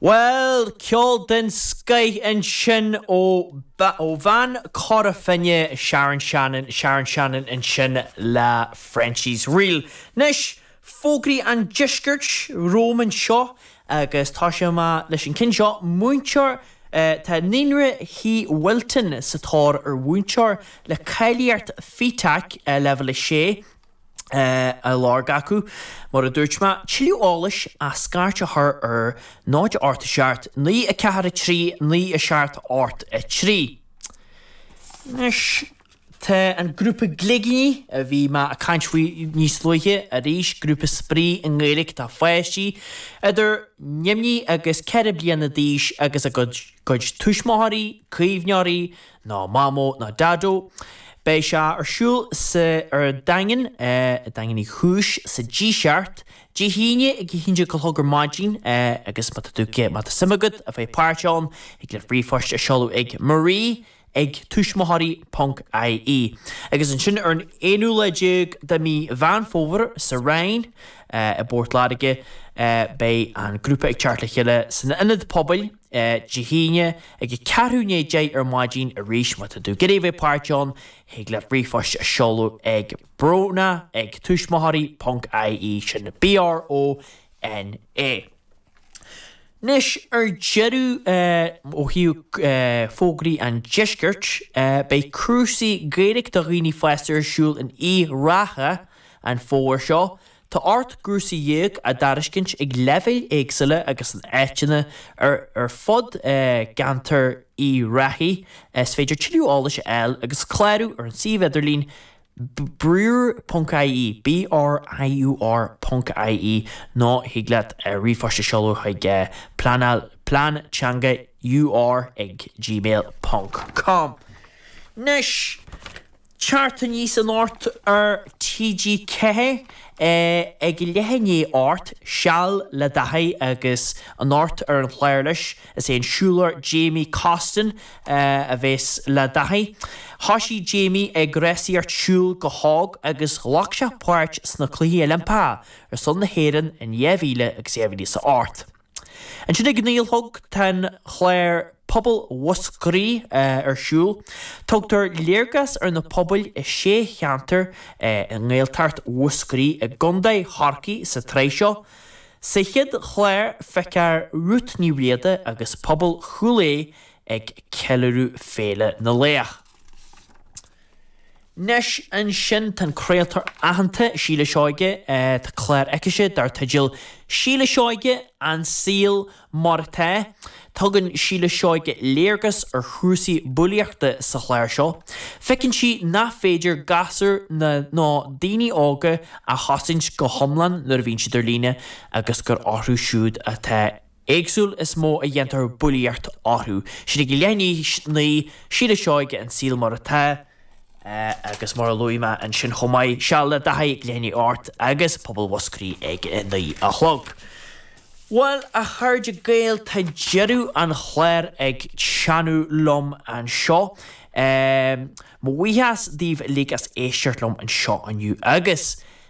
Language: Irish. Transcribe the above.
Bhuel, ceol den scoith ansin ó bhean Chora Finne, Sharon Shannon, Sharon Shannon ansin le Frenchie's Reel. Anois, fógraí an deiscirt romham anseo agus toiseoidh mé leis an ceann seo, múinteoir, tá Naíonra Thí Wilton sa tóir ar mhúinteoir le cáilíocht Fetac Leibhéal 6, á lorg acu. Mar a dúirt mé, tuilleadh eolais ach scairt a chur ar 0 8 7 9 4 3 9 7 8 3. Anois tá an grúpa gligíní a bhí mé ag caint faoi níos luaithe arís, grúpa spraoi i nGaeilge do pháistí idir neamhní agus ceithre bliana d'aois agus a gcuid tuismitheoirí, caomhneoirí ná Mamó ná Daideo. Beidh sé ar siúl sa ar an Daingean, Daingean Uí Chúis, sa Díseart, Dé hAoine ag 11:00 ar maidin agus má tá tú ag má tá suim agat a bheith páirteach ann thig leat ríomhphost a seoladh ag Marie ag tuismitheoirí ponc ie. Agus ansin ar an aonú lá déag de mhí Mheán Fómhair sa Rinn i bPort Láirge beidh an grúpa ag teacht le chéile san Ionad Pobail Dé hAoine ag a ceathrú i ndiaidh a deich ar maidin arís má tá tú ag iarraidh a bheith páirteach ann, thig leat ríomhphost a seoladh ag brona ag tuismitheoirí ponc ie sin B-r-o-n-a. Anois ar deireadh ó thaobh fógraí an deiscirt, beidh cúrsaí Gaeilge do dhaoine fásta ar siúl in Uíbh Ráthach an fómhar seo. Tá ocht gcúrsaí dhéag á dtairiscint ag leibhéil éagsúla agus in áiteanna ar ar fud cheantar Uíbh Ráthaigh. Is féidir tuilleadh eolais a fháil agus clárú ar an suíomh idirlín briur ponc ie, B-r-i-u-r ponc ie, nó thig leat ríomhphost a sheoladh chuig pleanáil Plean Teanga ur ag gmail ponc com. Anois. Teacht aníos anocht ar TG4 ag a leath i ndiaidh a hocht Seal le Dáithí agus anocht ar an chlár leis, is é an siúlóir Jamie Costin a bhéas le Dáithí. Thoisigh Jamie ag rásaíocht siúil go hóg agus ghlac sé páirt sna Cluichí Oilimpeacha ar son na hÉireann in 2000 agus 2008. Ansin ag naoi a chlog tá an chlár Pobal Mhúscraí ar siúl. Tugtar léargas ar na pobail i sé cheantar i nGaeltacht Mhúscraí i gContae Chorcaí sa tsraith seo. Sa chéad chlár feicfear Rút Ní Riada agus pobal Chúil Aodha ag ceiliúradh Féile na Laoch. Anois ansin tá an craoltóir aitheanta Síle Seoige, tá clár aicise dar teideal Síle Seoige, An Saol Mar Atá. Tugann Síle Seoige léargas ar chúrsaí bulaíochta sa chlár seo. Feiceann sí nach féidir gasúir ná nó daoine óga a chosaint go hiomlán nuair a bhíonn siad ar líne agus gur orthu siúd atá an éagsúil is mó a dhéantar bulaíocht orthu. Sin ag leath i ndiaidh a naoi Síle Seoige an saol mar atá agus mar a luaigh mé ansin chomh maith Seal le Dáithí ag leath i ndiaidh a hocht agus Pobal Mhúscraí ag a naoi a chlog. Bhuel a chairde Gael tá deireadh an chláir ag teannadh liom anseo. Mo bhuíochas daoibh uilig as éisteacht liom anseo inniu agus